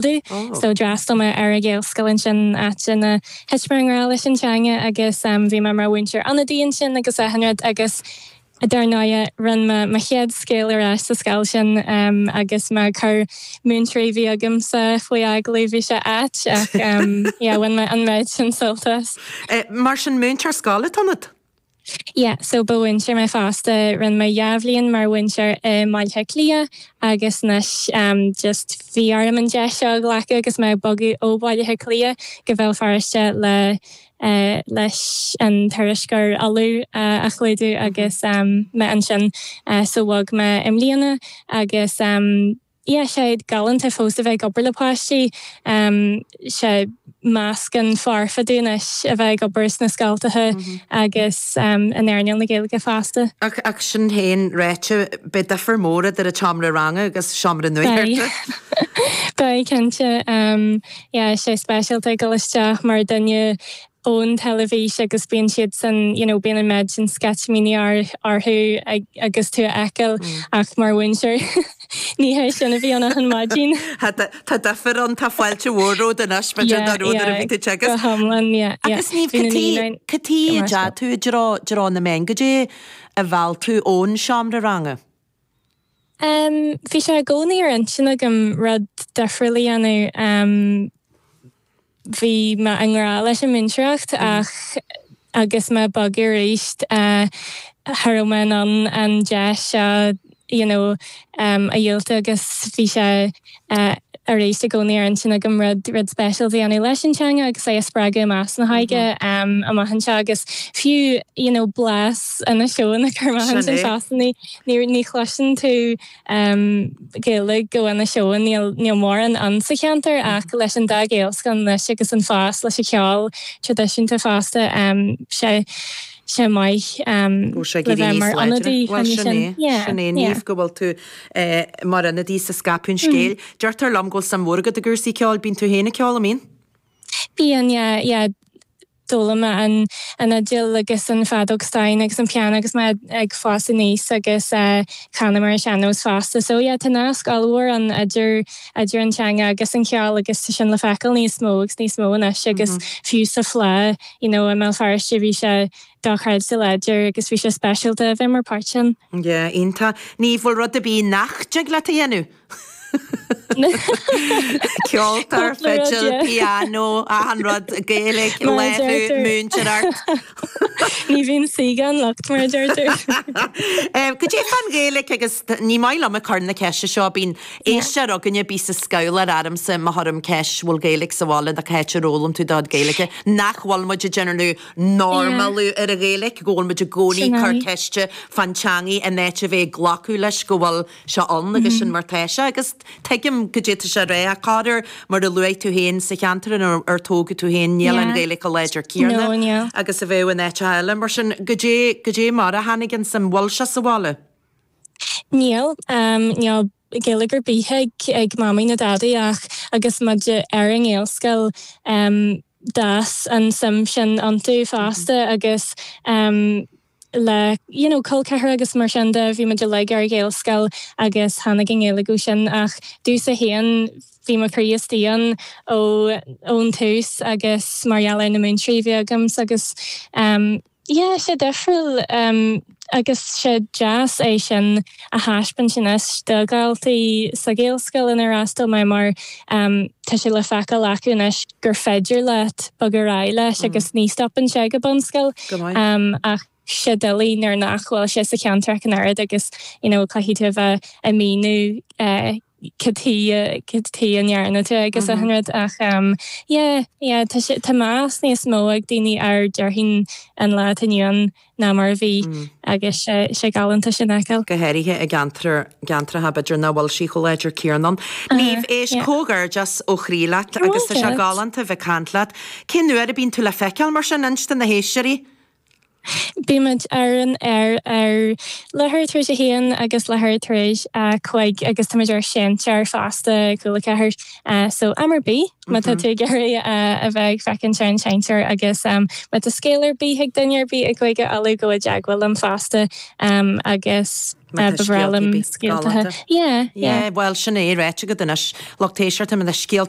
laghdú. So d'fhreastail mé ar an Ghaelscoil ansin áit ina thit mé i ngrá leis an teanga agus bhí mé mar mhúinteoir ionadaí ansin agus achan rud agus dar ndóighe rinne mé mo chéad scéal ar ais sa scoil sin agus mé ag cur múinteoirí a bhí agamsa faoi agallamh bhí sé ait ach yeah bhain mé an méid sin sult as. Mar sin múinteoir scoile ionat? Yeah so ba mhúinteoir mé fosta, rinne mé dhá bhliain mar mhúinteoir i mBaile Átha Cliath agus anois em just bhí orm an deis seo a ghlacadh agus mé ag bogadh ó Bhaile Átha Cliath go Béal Feirste le eh leis an tuairisceoir Uladh eh a chlúdú agus em mé ansin eh so bhog mé i mbliana agus em Yeah sé galánta fós a bheith ag obair le páistí. Sé meascán foirfe domh anois a bheith ag obair sna scoltacha agus in earnáil na Gaeilge fosta. Ach sin féin ráite, beidh difear mór idir an tseomra ranga agus seomra nuachta, Beidh. Beidh, cinnte. Sea, sé speisialta ag dul isteach mar dhuine ón teilifís agus bíonn siadsan you know bíonn an méid sin sceitimíní orthu agus tú a fheiceáil ach mar mhúinteoir ní hé sin a bhíonn achan maidin. Tá difear ann, tá fáilte mhór romhat anois maidir le nuair a bhí tú ag teagasc. Yeah yeah go hiomlán yeah yeah. Agus Niamh cad é cad é a d'fhéad tú i dtreo na meán, cad é a mheall tú ón seomra ranga? Bhí sé i gcónaí ar intinn agam rud difriúil a dhéanamh. Bhí mé i ngrá leis an múinteoireacht ach agus mé ag bogadh arís cha raibh mé in ann an deis seo you know a dhiúltú agus bhí sé. arís i gcónaí ar intinn agam rud rud speisialta a dhéanamh leis an teanga agus é a spreagadh i measc na hóige amach anseo agus fiú you know blas Inis Eoghain a chur amach ansin so ní ní ní chloiseann tú Gaeilge ó Inis Eoghain níl níl mórán ann sa cheantar ach leis an dá Ghaelscoil anois agus an fás leis an cheol traidisiúnta fosta sé sé maith le bheith mar ionadaí sin yeah yeah. Mar ionadaí is ag scaipeadh an scéil, deirtear liom go bhfuil suim mhór agat i gcúrsaí ceoil. Bíonn tú féin ag ceol, an mbíonn? Bíonn, yeah, yeah. D'fhoghlaim mé an fhidil agus an feadóg stáin agus an piano agus mé ag fás aníos agus canaim ar an sean-nós fosta. So, yeah, tá nasc ollmhór ann idir an teanga agus an ceol agus tá sin le feiceáil níos mó agus níos mó anois agus fiú sa Fleadh, you know, i mBéal Feirste bhí sé tá creideamh láidir agus bhí sé speisialta a bheith mar páirt ann. Yeah, iontach. Níl rud ar bith nach dtig leat a dhéanamh! Ceoltóir, fidil, pianó, achan rud, Gaeilge, láithriú, múinteoireacht. Ní bhíonn saoi gan locht, mar a deirtear. Goidé fán Ghaeilge agus ní maith liom ag cur na ceiste seo, bíonn éisteoir againn a bíos ag scoil ormsa má chuirim ceist bhfuil Gaeilge sa bhaile nó cá háit ar fhoghlaim tú do chuid Gaeilge, nach bhfuil muid ag déanamh normalú ar an Ghaeilge, go bhfuil muid i gcónaí cur ceiste fán teangaidh in áit a bheith ag glacadh leis go bhfuil sé ann agus sin mar tá sé agus tuigim goidé tá sé a rá ach cad é mar a luaigh tú féin sa cheantar inar tógadh tú féin níl an Ghaeilge chomh láidir céanna agus a bheadh in áiteacha eile mar sin goidé goidé mar a tháinig ansin an bhfuil sé sa bhaile? Níl, níl. Gaeilge ar bith ag Mamaí ná Dadaí ach agus muid ar an Ghaelscoil d'fhás an tsuim sin iontu fosta agus le you know col ceathracha agus mar sin de bhí muid uilig ar an Ghaelscoil agus tháinig an Ghaeilge ó sin ach ó thús a haon bhí mo chroí istigh ann ón tús agus mar gheall ar na múinteoirí a bhí agamsa agus yeah sé difriúil agus tá sé deas é sin a thaispeáint anois do dhaltaí sa Ghaelscoil inar fhreastail mé mar tá sé le feiceáil acu anois gur féidir leat bogadh ar aghaidh leis agus ní stopann sé ag an bunscoil ach tá sé doiligh nuair nach bhfuil sé sa cheantar ach an oiread agus you know caithfidh tú a bheith ag míniú cad é a rinne tú agus achan rud ach yeah yeah tá sé tá meas níos mó ag daoine air déarfainn an lá atá inniu ann ná mar a bhí agus sé sé galánta sin a fheiceáil. go háirithe i gceantar gceantracha b'fhéidir nach bhfuil sí chomh láidir Caoimhe Ní Mhaoláin yeah comhghairdeas ó chroí leat agus tá sé galánta a bheith ag caint leat. Cén uair a bhíonn tú le feiceáil mar sin inis do na héisteoirí? Bímid ar an aer ar leathuair tar éis a haon agus leathuair tar éis a cúig agus táimid ar sheinnteoir fosta Cúla4 so am ar bith má tá tú ag iarraidh a bheith ag féachaint ar an seinnteoir agus má tá scéal ar bith ag duine ar bith i gCúige Uladh gabh i dteagmháil liom fosta agus ba bhreá liom scéalta a fháil. Bhuel sin é, ráite agat anois lucht éisteachta, má tá scéalta